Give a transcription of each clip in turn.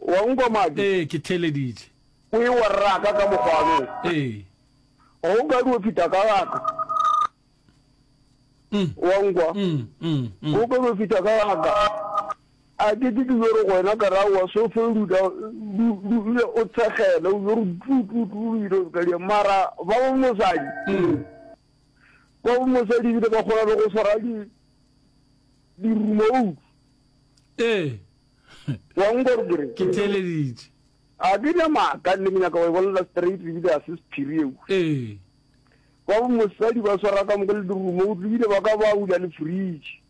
O a nkwa, Madi? Ee, ke theeleditše. O ewa rraka ka mokgwano. Ee. Ga o kadi o feta ka gaka. O a nkwa? Ga o kadi o feta ka gaka. A ke ke ke yo re go wena ka ra wa so fe ruta dule o tshegela o yo re tlu tlu tlu o ile ka dia mara ba bo mosadi ba bo mosadi bile ba kgona le go swara di di remote ee Wa nkwa gore ke reng? Ke theeleditše. A ke na maaka nne ke nyaka go e bolela straight ebile a se sephiri ewu. Ee. Ba bo mosadi ba swara ka moka le dirumo o tlobile ba ka ba ula le fridge.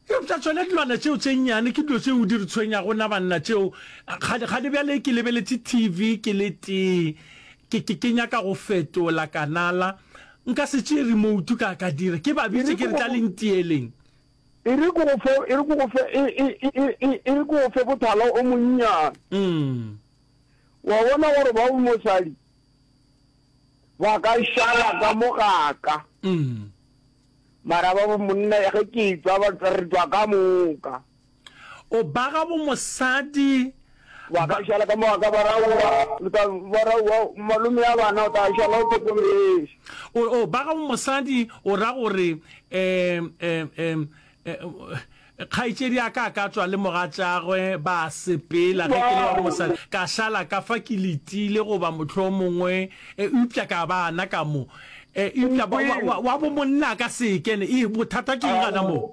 Eupša tšone dilwana tšeo tše nnyane ke dilo tšeo di re tshwenyago na banna tšeo. Kgane kgane bjale ke lebeletše TV ke le tee ke ke ke nyaka go fetola kanala nka se tšee remote ka ka dira ke ba bitše ke re tla le ntieleng. E re ke go fe, e re ke go fe, e, e, e, e, e, e re ke go fe bothala o monnyane. Mm. Wa bona gore ba o mosadi ba ka šala ka mo gaka. Mm. Mara ba bo monna ya ge ke tswa ba re tswa ka moka. O baga bo mosadi Wa ka šala ka mo wa ka barauwa, o tla barauwa, malome ya bana o tla šala o tlhokomešwa. O, o, ba gago mosadi o ra gore, em, em, em, em, kgaetšedi a ka a ka tswa le mogatšagwe ba sepela ge ke le wa mosadi ka šala ka fa ke letile goba motlho mongwe e, eupša ka bana ka mo e, eupša wa, wa, wa bo monna ka sekene e bothata ke eng gana moo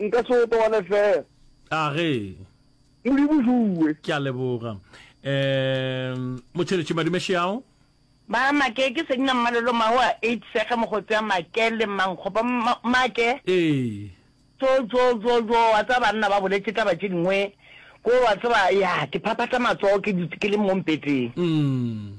Nka se go tobane fela. A ge. Modimo Zuwe. Ke a leboga. Um, Motšheletši Madume Xiao. Ba re Make ke Senna Mmalelo mma wa Eight Sege Mogotsi ya Make le Mmankgopa. Mma, Make. Ee. Tjo, tjo, tjo, tjo, wa tseba banna ba boletše taba tše dingwe ko, wa tseba, ya, ke phaphatha matsogo ke dutše ke le mo mpeteng. Umm.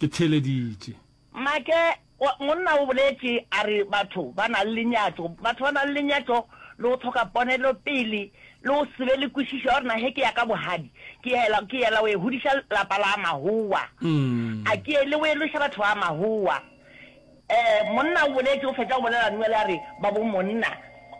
Ke theeleditše. Make, wa, monna o boletše, a re, Batho ba na le lenyatšo, batho ba na le lenyatšo le go hloka ponelopele le go se be le kwešišo ya gore na ge ke ya ka bohadi ke yela, ke yela go e hodiša lapa la mahowa, a ke yele go eloša batho ba mahowa. Eh, monna o boletše, o fetša go bolela Noele a re, Babomonna,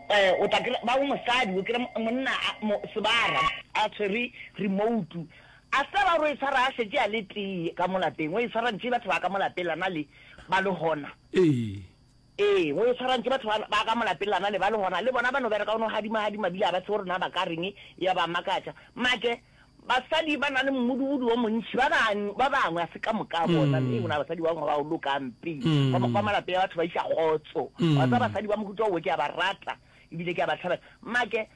eh, o tla kry-a, babomosadi, o kry-a monna a, mo, sebara, a tshwere remoutu, A se ra ro e swara a šetše a le tee ka mo lapeng? O e swarantše batho ba ka mo lapeng la na le ba le hona? Ee. Ee, o e swarantše batho ba, ba ka mo lapeng la na le ba le hona. Le bona ba no bereka, o no hadima-hadima bile a ba tsebe gore na ba ka reng, ya ba makatša. Make, Basadi ba na le mmudubudu o montši, ba bang, ba bangwe, a se ka moka bona. Ee, go na le basadi ba bangwe ba go lokang pe. Ka mokgwa wa malapeng a batho ba iša kgotso. Wa tseba basadi ba mohuta wo ke a ba rata ebile ke a ba thabela. Make,